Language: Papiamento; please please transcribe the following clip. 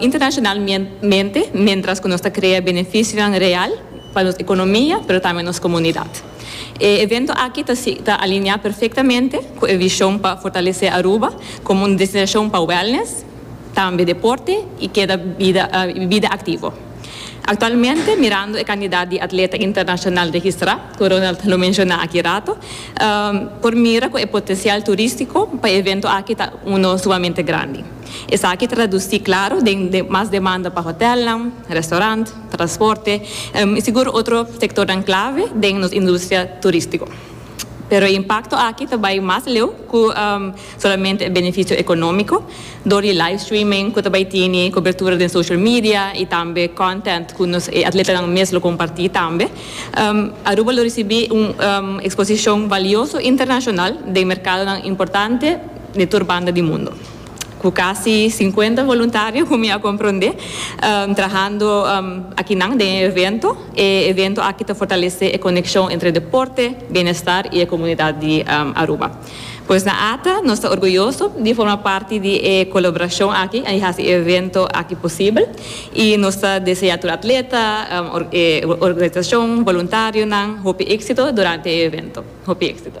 internacionalmente mientras cu nos ta crea beneficionan real pa nos economia pero tambe nos comunidad. E evento aki ta ta alinea perfectamente cu e vision pa fortalece Aruba como un destinacion pa wellness, tambe deporte y keda bida bida activo. Actualmente mirando e cantidad di atleta internacional registra cu Ronald lo menciona aki rato por mira cu e potencial turistico pa e evento aki ta uno sumamente grandi. Esaki traduci claro den mas demanda pa hotelnan, restaurant, transporte y sigur otro sectornan clave den nos industria turistico. Pero e impacto aki ta bay mas leu cu solamente e beneficio economico door di live streaming cu ta bay tini cobertura den social media y tambe content cu nos e atletanan mes lo comparti tambe. Aruba lo ricibi un exposicion valioso internacional den mercadonan importante di tur banda di mundo. cu casi cincuenta voluntario, cu mi a comprende, trahando akinan den e evento. E evento aki ta fortalece e conexion entre deporte, bienestar y e comunidad di Aruba. Pues na Ata, nos ta orguyoso di forma parti di e colaboracion aki y haci e evento aki posibel. Y nos ta desea tur atleta, e organizacion, voluntarionan hopi exito durante e evento. Hopi exito.